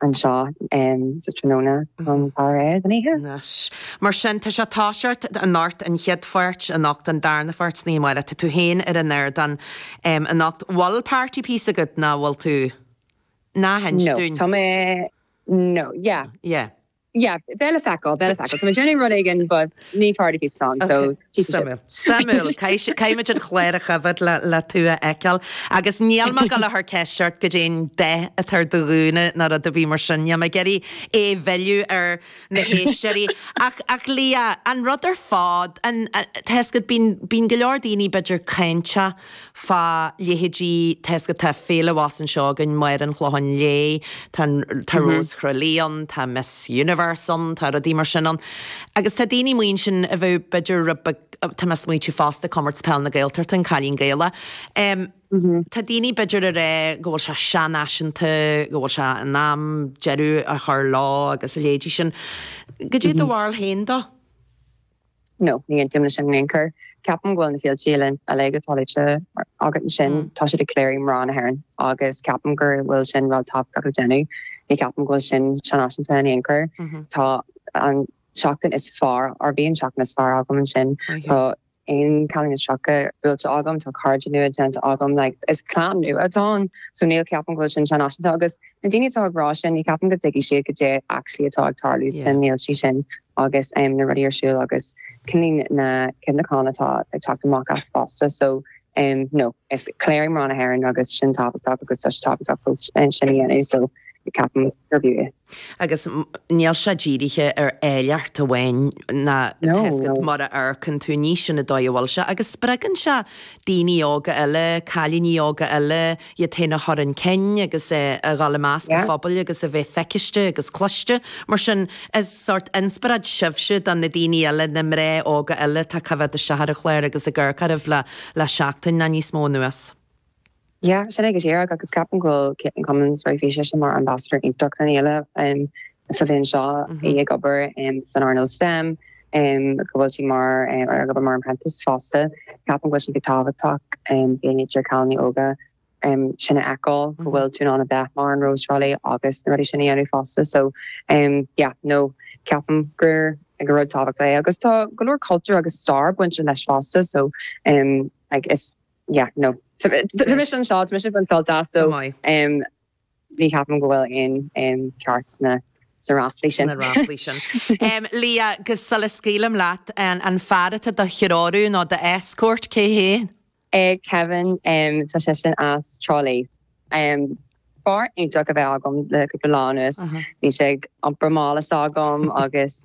anseo um thráthnóna chun faire air don oíche. Mar sin, tá sé, tá a fhios agat, anocht an chéad pháirt anocht an darna pháirt sna Marys, tá tú féin ar an ardán anocht an bhfuil party piece agat ná bhfuil tú? Ná hinis No, dúinn. tá mé No, yeah. Yeah. Yeah, bhuel le feiceáil le feiceáil, Tá mé ag déanamh rud éigin but ní party piece atá ann so Okay. tchífidh sibh. Suimiúil. Suimiúil. Caith si- Caithfimid an chlár a choimhead le, le tú a fheiceáil. Agus níl mé ag dul a chur ceist ort goidé an dath atá ar do ghúna ná rud ar bith mar sin. Níl mé ag iarraidh é mhilleadh ar na héisteoirí. Ach, ach Leah, an rud ar fad, an, a, tá a fhios agat, bíonn, bíonn go leor daoine b'fhéidir cáinteach, fá leithéidí, tá a fhios agat. Tá Féile abhus anseo againn, Máire an Chlocháin Léith, tá an, tá Rós Thrá Lí ann, tá Miss Universe ann, tá rudaí mar sin ann. Agus tá daoine amuigh ansin a bheadh b'fhéidir rud beag, tá mé ag smaoitiú fosta Comórtas Peil na Gaeltachta, an Cailín Gaelach. Em, tá daoine b'fhéidir ag rá go bhfuil sé seanfhaiseanta, go bhfuil sé in am deireadh a chur leo agus a leithéidí sin. Goidé do bharúil féin dó? No, ní aontaím leis sin in aon chor. Ceapaim go bhfuil na féilte eile uilig atá luaite agat ansin, tá siad ag léiriú mná na hÉireann agus ceapaim gur bhfuil sin rud tábhachtach le déanamh. Ní ceapaim go bhfuil sin seanfhaiseanta in aon chor. Tá an tseachtain is fearr or bhí an tseachtain is fearr agam ansin. Tá aon cailín is tríocha buailte agam, tá cairde nua déanta agam, like is clann nua atá ann so ní ceapaim go bhfuil sin seanfhaiseanta agus Na daoine atá ag rá sin ní cheapaim go dtuigfidh siad goidé actually atá ag tarlú sna féilte sin agus em na rudaí ar siúl agus cuimhní na cuimhneachán atá ag teacht amach as fosta so em no is ag léiriú mná na hÉireann agus sin tábhachtach agus tá sé tábhachtach fós em sin a dhéanamh so ní ceapaim gurb é. Agus níl sé dírithe ar áilleacht amháin ná No tá fhios no. agat má amharcann tú ní sin an dóigh a bhfuil sé agus spreagann sé daoine óga eile, cailíní óga eile, iad féin a chur 'un cinn agus a dhul i measc an phobail agus a bheith feicthe agus cloiste. Mar sin, is sórt inspioráid sibhse do na daoine eile, na mná óga eile atá ag coimhead isteach ar an chlár agus ag amharc oraibh le seachtain nó níos mó anuas. Yeah, sin é go díreach agus ceapaim go bhfuil Katelyn Cummins, beidh sise mar ambassadóir iontach ar an fhéile. sa bhliain seo agus í ag obair san earnáil stem go bhfuil sí mar ag obair mar apprentice fosta. Ceapaim go bhfuil sé an-tábhachtach do cailíní óga sin a fheiceáil go bhfuil tú in ann a bheith mar an Rose of Tralee agus na rudaí sin a dhéanamh fosta so yeah no ceapaim gur gur rud tábhachtach é agus tá go leor cultúr agus stair bainte leis fosta so like is yeah no tá mise anseo tá mise ag baint sult as so Ní cheapaim go bhfuil aon ceart sna ráflaí sin. Leah, 'Gus sula scaoilim leat, an fear atá do threorú nó do escort, cé hé? Kevin, tá seisean as Trá Lí. Fear iontach a bheith agam le cúpla lá anuas. Bhí sé ag iompar mála s'agam agus.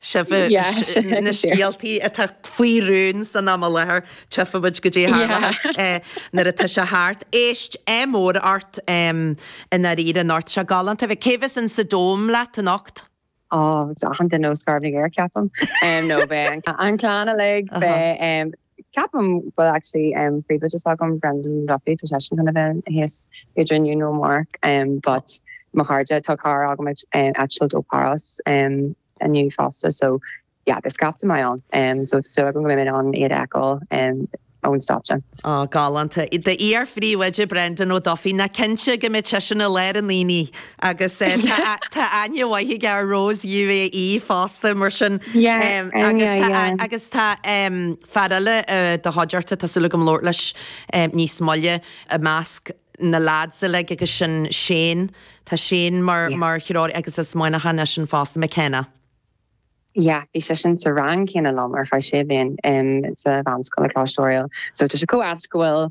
Sin na scéaltaí atá faoi rún san am i láthair, tiocfaimid go dtí Tharlathas nuair atá sé thart. Éist, ádh mór ort i ndáiríre, anocht, seo galánta a bheith. Cé bheas in sa Dome leat anocht? Ó, beidh achan duine ó Scairbh na gCaorach, ceapaim. No, beidh an clann uilig, beidh. Ceapaim go bhfuil actually príomhoide s'agam Brendan O'Duffy tá seisean chun a bheith thíos either inniu nó amárach but mo chairde tá cara agam ag eitilt ó Páras inniu fosta so yeah beidh scaifte maith ann so tá súil agam go mbeidh mé in ann iad a fheiceáil ón stáitse. Ó, galánta. D'iar-phríomhoide Brendan O'Duffy nach cinnte go mbeidh seisean i lár an aonaigh. Agus tá aithne mhaith aige ar Rose UAE fosta mar sin. Agus tá fear eile i do chuideachta, tá súil agam labhairt leis níos moille, i measc na leaids uilig agus sin Shane, tá Shane mar threoraí agus as Muineachán eisean fosta, McKenna. Yeah, bhí seisean sa rang céanna liom ar feadh sé bhliain sa mheánscoil i gColáiste Oiriall. So tá sé chomh ait go bhfuil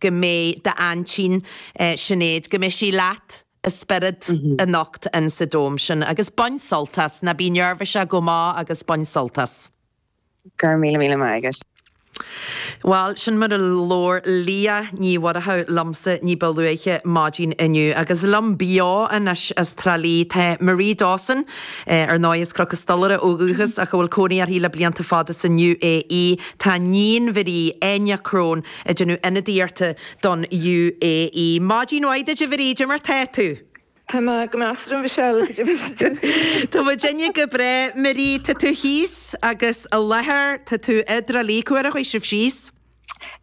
go mbeidh d'aintín, Sinéad, go mbeidh sí leat i spiorad anocht in sa dome sin agus bain sult as, ná bí neirbhíseach go maith agus bain sult as. Go raibh míle míle maith agat. Bhal, sin mar a labhair Leah Ní Mhuireadhaigh liomsa ní ba luaithe maidin inniu. Agus liom beo anois as Trá Lí tá Marie Dawson, ar ndóigh as Cnoc an Stolaire ó dhúchas ach a bhfuil cónaí uirthi le blianta fada san UAE, tá 'níon Mharie, Enya Crone, ag déanamh ionadaíochta don UAE. Maidin mhaith duit, a Mharie, caidé mar tá tú. Tá mé go maith a Mhichelle, caidé mar tá tú. Tá muidinne go breá, Marie. Tá tú thíos agus i láthair. Tá tú i dTrá Lí. Cá huair a chuaigh sibh síos?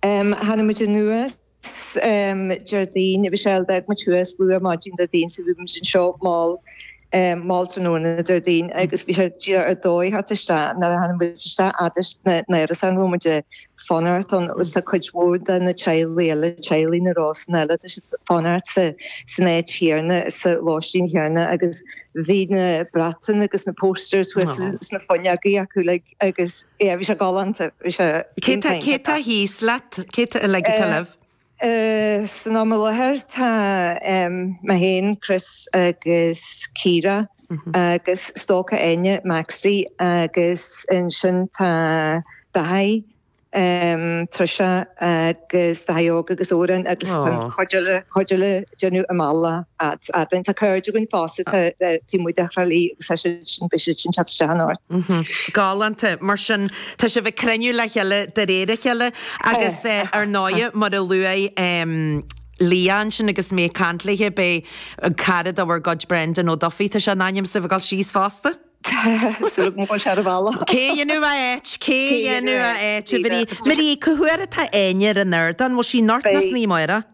Tháinig muid anuas Déardaoin, a Mhichelle. D'fhág muid thuas luath maidin Déardaoin so bhí muid anseo mall. um mall tráthnóna Déardaoin agus bhí sé díreach ar dóigh teacht isteach nuair a tháinig muid isteach fhad leis na hárasáin a bhfuil muid ag fanacht ann agus tá cuid mhór de na teaghlaigh eile, teaghlaigh na Rósanna eile, tá siad ag fanacht sa san áit chéanna, sa lóistín chéanna agus bhí na bratacha agus na posters thuas sna fuinneogaí acu like agus yeah bhí sé galánta, bhí sé Cé tá thíos leat, cé tá uilig i dTrá Lí? San am i láthair tá mé féin, Chris agus Ciara agus stócach Áine, Maxi, agus ansin tá Daithí, Trisha agus Daithí Óg agus Odhrán agus tá an chuid eile ag déanamh a mbealach as Albain. Tá cairde againn fosta, tá Diarmuid ó Thrá Lí agus tá siad sin, beidh siad sin teacht isteach anoir. Galánta, mar sin. Tá sibh ag cruinniú le chéile de réir a chéile agus ar ndóighe mar a luaigh Liadh ansin agus mé ag caint léithe beidh cara de bhur gcuid Brendan O Duffy, tá sé in ainm is a bheith ag dul síos fosta. Súil go bhfuil sé ar a bhealach. Cé a dhéanfadh a áit? Cé a dhéanfadh a áit? Marie, cá huair atá Áine ar an ardán? Bhfuil sí anocht nó san oíche amárach?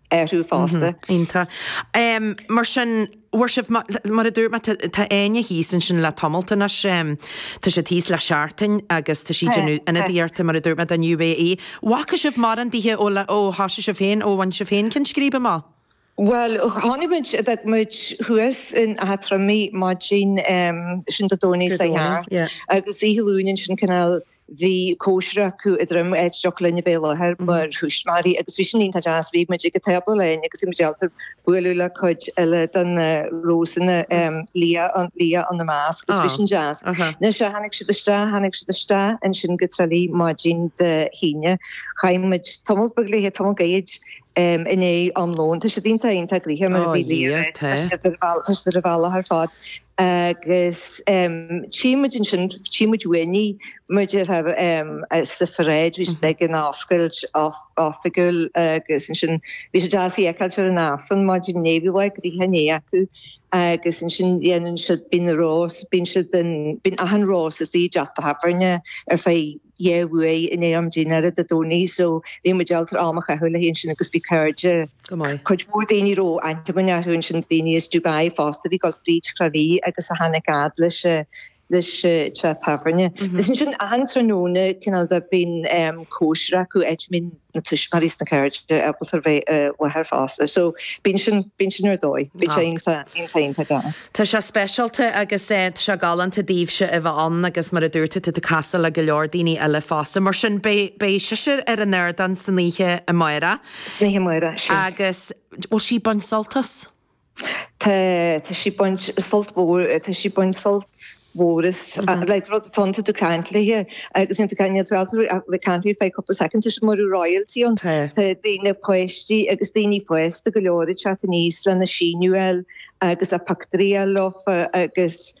airthú fosta. Iontach. Mar sin, bhfuair sibh, mar a dúirt mé, tá Áine thíos ansin le tamallt anois, tá sí thíos le seachtain agus tá sí ag déanamh ionadaíochta, mar a dúirt mé, don UAE. Bhfaca sibh mórán daoithe ó thosaigh sibh féin, ó bhain sibh féin ceann scríbe amach? Bhuel, tháinig muid, d'fhan muid thuas in Áth Troim, bhí muid ansin Dé Domhnaigh seo chuaigh thart agus oíche Luain ansin cineál Bhí cóisir acu i dTroim, áit a dtiocfadh linne bheith i láthair mar thuismitheoirí agus bhí sin iontach deas. Bhí muid ag an tábla linn agus bhí muid ábalta bualadh le cuid eile de na Rósanna, Liadh ina measc agus bhí sin deas. Anois tháinig siad isteach, tháinig siad isteach ansin go Tralee maidin Dé hAoine. Chaith muid tamall beag léithe, tamall gairid i ndiaidh am lóin. Tá siad iontach, iontach gnoitheach mar bhí Liadh, tá siad ar an bhealach ar fad. Agus tchí muid ansin, tchí muid uainn í, mar a déarfá, sa pharáid, bhí siad ag an oscailt oifigiúil agus ansin bhí sé deas í a fheiceáilt ar an Aifreann maidin inné, bhí lá gnoitheach inné acu agus ansin dhéanann siad, bíonn na rós, bíonn siad, bíonn achan rós istigh i dteach tábhairne ar feadh, dhá uair in am dinnéara Dé Domhnaigh so bhí muid ábalta am a chaitheamh léi annsin agus bhí cáirde, Go maith. cuid mhór daoine a raibh aithne againn ortha annsin, daoine as Dubai fosta a bhí ag dul fríd Thrá Lí agus a tháinic fhad leis an, leis an teach tábhairne. Is annsin achan tráthnóna cineál de, bíonn em, cóisir acu, áit a mbíonn, na tuismitheoirí is na cairde ábalta bheith i láthair fosta so bíonn sin, bíonn sin ar dóigh. Bíonn sé iontach, iontach, iontach deas. Tá sé speisialta agus tá sé galánta daoibhse a bheith ann agus mar a dúirt tú, tá tú ag casadh le go leor daoine eile fosta. Mar sin beidh, beidh sise ar an ardán san oíche amáireach. San oíche amáireach, sin. Agus bhfuil sí baint sult as. Tá, tá sí baint sult mhór, tá sí baint sult mhór as, like rud atá ann, tá tú ag caint léithe agus níl tú ag caint, níl tú ábalta ach a bheith ag caint léithe fá chúpla soicind, tá sé mar royalty ann. Tá. Tá daoine páistí agus daoine fásta go leor ag teacht aníos lena síniú a fháil agus pictiúirí a fháil leofa agus.